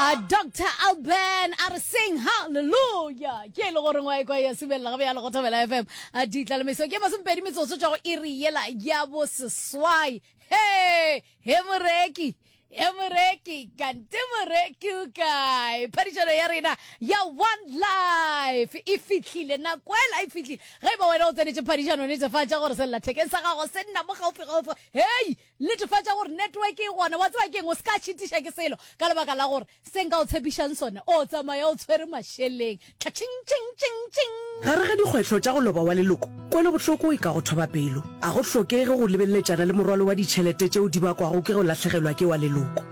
a dr alban a re seng halleluja ke e le goreng wa ekwa ya subelela gabe ya le go thobela fm a ditla le meso ke masomepedi metsotso tšwa go iri yela ya boseswai he he moreki he moreki kante moreki o kae phadišano ya rena ya one life e fihlile nako ela e fihlile ge e ba wena o tsenetše phadišano netefatša gore sellathekeng sa gago se nna mo gaufigaufi hei Netefatša gore network e gona. Wa tseba ke eng? O se ka šitiša ke selo ka lebaka la gore se nka o tshepišang sona o tsamaya o tshwere mašeleng. Tlatšing, tšing, tšing, tšing. Gare ga dikgwetlho tša go loba wa leloko, kwelobohloko e ka go thoba pelo. Ga go hlokege go lebeletšana le morwalo wa ditšhelete tšeo di bakwago ke go lahlegelwa ke wa leloko.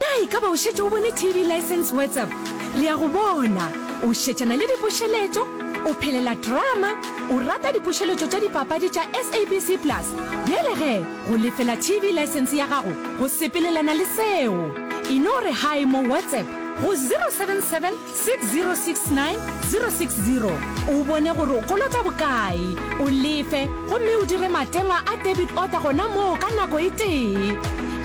Na e ka ba o šetše o bone TV License WhatsApp? Re a go bona o šetšana le dipušeletšo, o phelela drama, o rata dipušeletšo tša dipapadi tša SABC Plus. Bjale ge go lefela TV License ya gago go sepelelana le seo, e no re hi mo WhatsApp go 077 6069 060 o bone gore o kolota bokae, o lefe gomme o dire matengwa a debit order gona moo ka nako e tee.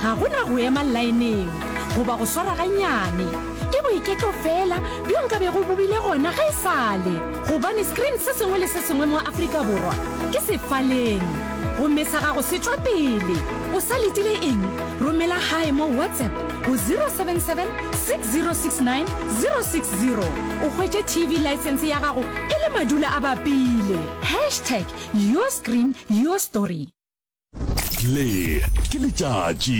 Ga go na go ema laeneng goba go swara gannyane. Ke boiketlo feela bjo nka bego bo bile gona ge e sa le, gobane screen se sengwe le se sengwe mo Afrika Borwa ke sefaleng. Gomme sa gago se tšwa pele. O sa letile eng? Romela gae mo WhatsApp. go 077 6069 060 o hwetše tv license ya gago e le madula a bapile hashtag your screen your story le ke letšatši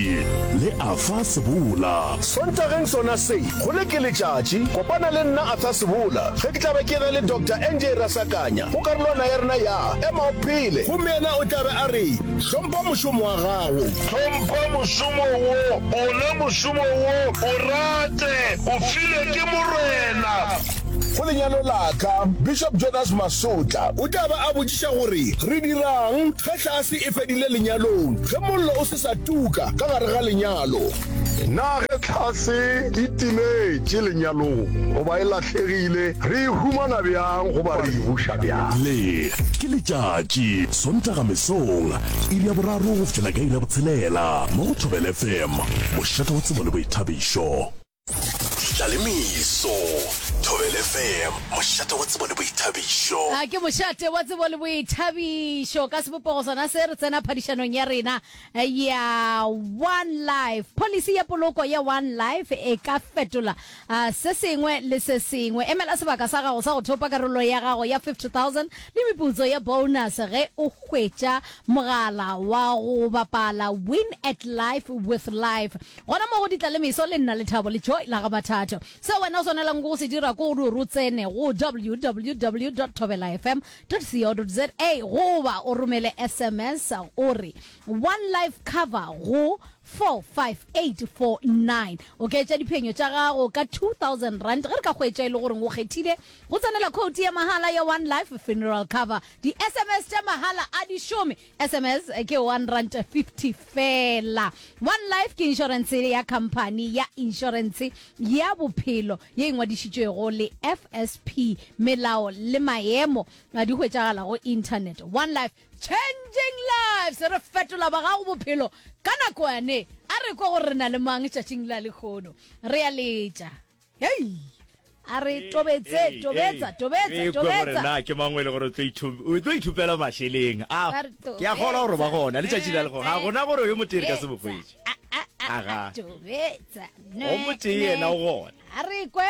le afa sebola sontageng sona se go le ke letšatši kopana le nna atha sebola ge ke tlabe ke re le dr nj rasakanya go karolwana ya rena ya ema o phele gomme yena o tlabe a re hlompha mošomo wa gago Hlompha mošomo wo, ona mošomo wo, o rate, o filwe ke Morena. Go lenyalo la ka, Bishop Jonas Masotla o tla ba a botšiša gore re dira'ng ge tlhase e fedile lenyalong, ge mollo o se sa tuka ka gare ga lenyalo, na ge tlhase e timetše lenyalong goba e lahlegile re e humana bjang goba re e buša bjang. Le, ke letšatši, Sontaga mesong, Iri ya boraro go fihlela ka iri ya botshelela mo go Thobela FM, mošate wa tsebo le boithabišo. Tlalemiso, Thobela FM, mošate wa tsebo le boithabišo. A ke mošate wa tsebo le boithabišo ka sebopego sona se re tsena phadišanong ya rena ya one life policy ya poloko ya one life e ka fetola A se sengwe le se sengwe. Emela sebaka sa gago sa go thopa karolo ya gago ya 50,000 le meputso ya bonus ge o hwetša mogala wa go bapala Win at Life with Life. Gona mo go Ditla le Meso le Nna Lethabo le Joy la ga Mathatho. Seo wena o swanelago ke go se dira ke gore o tsene go www.thobelafm.co.za goba o romele sms o re One Life Cover go 45849. Oketša diphenyo tša gago ka R2000 ge re ka hwetša e le gore o kgethile go tsenela khoutu ya mahala ya One Life Funeral Cover. Di-SMS tša mahala a di šome. SMS ke R1.50 feela. One Life ke inšorense ya khamphani ya inšorense ya bophelo ye e ngwadišitšwego le FSP. Melao le maemo di hwetšagala go Internet. One Life. Changing lives, re fetola ba gago bophelo ka nako yane. A re kwa gore re na le mang tšatšing la lekgono. Re ya letša. Hei! A re tobetse, tobetsa, tobetsa, Re kwe gore tobetsa. na ke mang o e le gore o tlo ithu- o tlo ithupela mašeleng a Ba re ke a kgolwa gore ba tobetsa. gona letšatši la lekgono ga gona gore yo motee re ka se mo Tobetsa. hwetše Ah, ah, ah, Aga. ah, tobetsa. O motee yena o gona. A re kwe.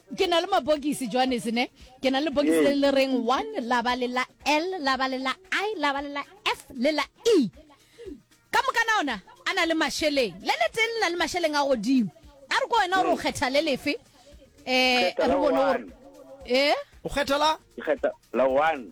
Ke na le mabokisi, Johannes, ne? Ke na le bokisi le le reng one, la ba le la L, la ba le la I, la ba le la F, le la E. Ka moka na ona a na le masheleng. Le le tee le na le masheleng a godimo. A re ko wena gore o kgetha le lefe? Eh, re bone gore... Eh? O kgetha la? Ke kgetha la one.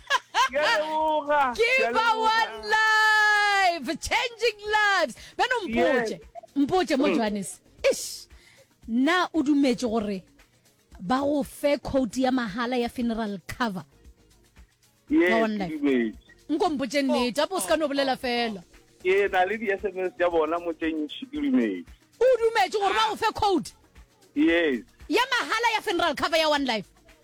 kiba one life changing lives beno mpotše mpotše mo mm. johannes ish na o dumetše gore ba go fe code ya mahala ya funeral cover nko mpotše oh, neta bo se ka no oh, bolela oh, fela ke na le di-sms tša bona mo tše ntšhi ke dumetse o dumetše gore ba go fe code yes ya mahala ya funeral cover ya one life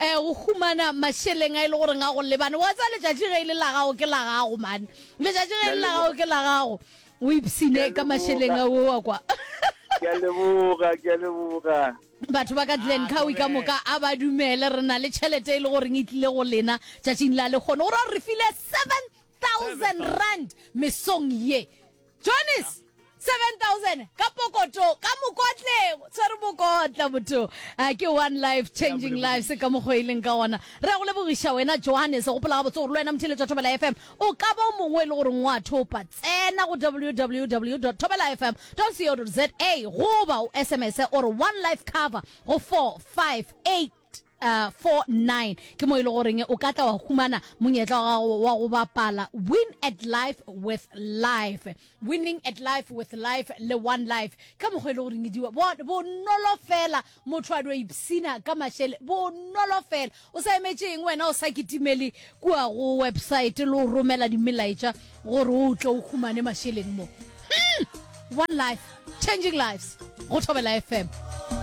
E, go humana mašeleng a e le goreng a go lebane. Wa tsa letšatši ge e le la gago ke la gago mane. Letšatši ge e le la gago ke la gago. O ipsine ka mašeleng a wo wa kwa. Ke a leboga, ke a leboga. Batho ba ka Glen Cowie ka moka a ba dumele re na le tšhelete e le goreng e tlile go lena tšatšing la lekgono. O ra re file 7000 rand mesong ye. Johnny's 7000 ka pokoto ka mokotleng o tshwere mokotla motho a ke one life changing life se ka mokgwa e leng ka gona re go lebogiša wena johannes gopola ga botse gore le wena motheletša thobela fm o ka ba o mongwe e le goreng wa thopa tsena go www thobela fm co za goba o sms ore one life cover go 458 49 ke mo e le goreng o ka tla wa humana monyetla wa gago wa go bapala win at life with life winning at life with life le one life ka mokgwa e le goreng diwa bonolo fela motho a dwa ipsina ka mašele bonolo fela o sa emetše eng wena o sa kitimele kua go website le o romela dimelaetša gore o tle o humane mašeleng mo hmm, one life changing lives go thobela fm